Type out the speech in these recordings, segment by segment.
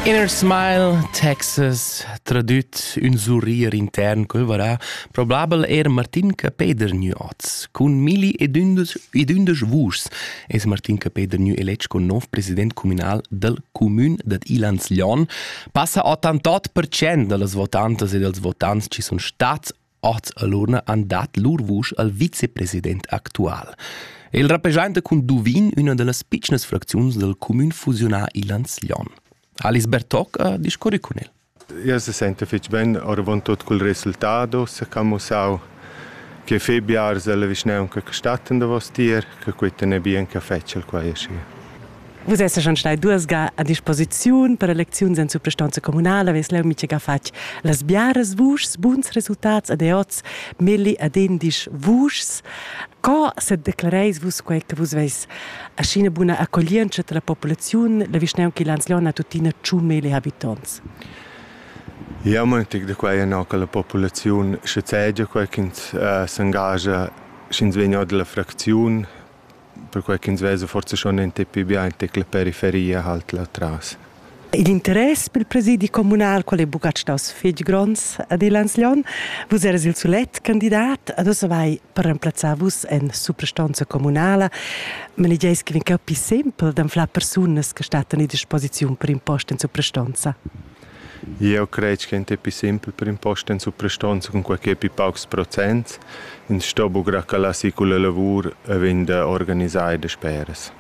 Inner Smile, Texas, tradüt ün surrir intern quel varà, probabel er Martin Capeder Nuots. Cun milli ed ündesch, ed ündesch vuschs es Martin Capeder Nü eletg con nov president communal del comün dad Ilans Lyon. Passa 81% da las votantas e dels votants ci sun stats Oz alura han dat lur vusch al vicepresident actual. El rappresenta cun Duvin üna da las pitschnas fracziuns dal cumün fusiunà Ilans Lyon. Alice Bertoc ha discurri cun el. Ja se sente fitg ben, oravontot cul resultat ussa ch'ha mussau che fei biars dalla vischnaunca che stattan davos tier, che quei tene bien che fetschel quai aschi. Vus essan stai duas ga a disposiziun per elecziuns en suprastonza communala, ves leu mintga fatg las biaras vuschs, buns resultats ed oz melli ad indisch vuschs. Co sedeclareis vus quei che vus veis aschi ina buna accoglientscha dalla populaziun, la vischnaunca Lanzlon ha tuttina tschun melli habitonts? Jau mantig da quai ennà che la populaziun schazegia quai ch'ins s'engagia, sch'ins vegn or da la fracziun perquai ch'ins vesa forsa schon in tip pli bien tic la periferia halt là tras. Il interess per il presidi communal, qual è buca staus fetg gronds ad il Lanslon, vus eras il sulet candidat, ad ossa vai per remplazzar vus en suprastonza communala, ma ne gieis che vi capi sempel d'anflar persunas che stattan a disposiziun per impost en suprastonza. Jeu cret ch'en ti pli simpel per imposta en suprastonza cun quei ch'ei pli paucs procents. Ins sto buca calar si culla lavur e vegn organisai dasperas.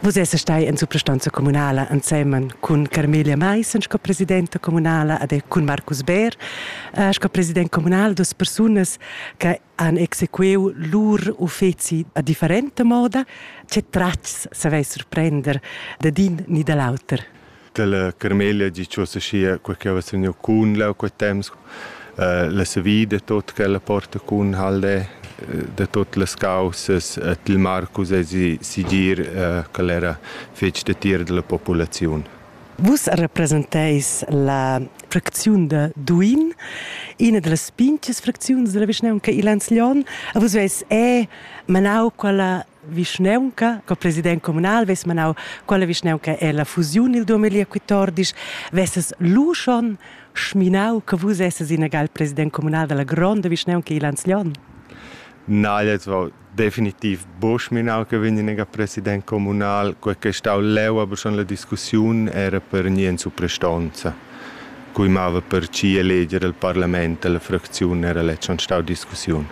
Vus essas stai en suprastonza communala ensemen cun Carmelia Maissen sco presidenta communala ed cun Marcus Beer sco president communal dus persunas che han exequiu lur uffeci a differenta moda. Tge tratgs savais surprender dad in ni da l'auter? Dalla Carmela di ch'ussa schia quei che havess vegniu cun leu quei temps eh, la savida tot ch'ella porta cun Haldè eh, da tot las caussas et il Marcus e si sigir eh, ch'el era fetg datier dalla populaziun. Vus representeis la fracziun da Duin, ina delles pinches fracziuns della vischnaunca Ilans Lion, a vus veis è manau quella vischnaunca co president communal vess manau quella vischnaunca è la fusiun il 2014 vesses lu schon schminau che vus esses inegal president communal della gronda vischnaunca il Lanzlion Na, jetzt war definitiv Boschminau che vegniva president communal, quel che stau leu aber schon la discussiun era per nien supprestonza. Cui mava per ci eleger il parlament, la fracziun era lett schon stau discussiun.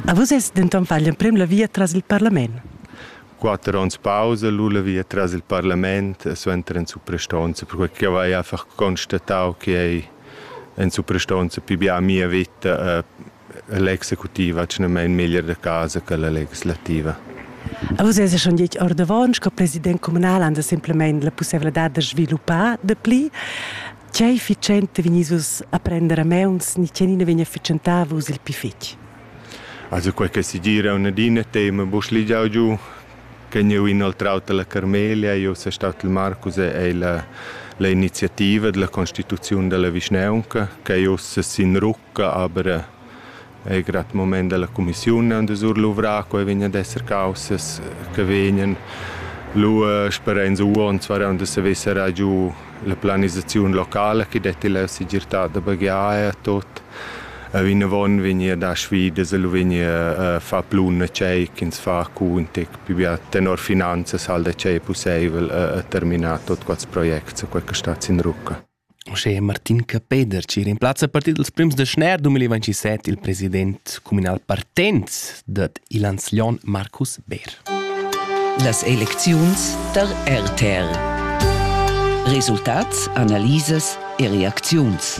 A vus es denton fagl emprem la via tras il parlament. Quatter onns pausa lu la via tras il parlament e suenter en suprastonza, perquei che jau hai einfach constatau che ei en suprastonza pi bia mia vita e l'executiva tgnamein meglier da casa che la legislativa. A vus es schon detg ordavon sco president communal han da simplemente la pussevladad da sviluppar de pli Tgei efficienta vegnis vus a prender a meuns ni tgenina vegn efficientava vus il pli fetg? Also quei che segir è un'adina tema bu schligiau giu che jeu inoltrau dalla Carmelia, jeu sei stat il Marcus e ei la, la iniziativa della constituziun della vischnaunca che jeu sin rucca aber Ei grad mument dalla cumissiun aunc da surluvrar, quei vegn ad esser caussas che vegnan. Lu sperein uonts varan da saver serrar giu la planisaziun locala che detti la segirtad da baghiar e tot. E vinavon vegnir a dar sfidas e lu vegnir a far plun a tgei ch'ins fa cun tec pli bia tenor finanzas, hal da tgei pusseivel a terminar tot quels projects e quei che stat sin rucca. Uschè Martin Capeder chi rimplazza a partir dals prims da schner 2027 il president cumünal partenz dad Ilans Lon Markus Beer. Las elecziuns tar RTR Resultats, analisas e reacziuns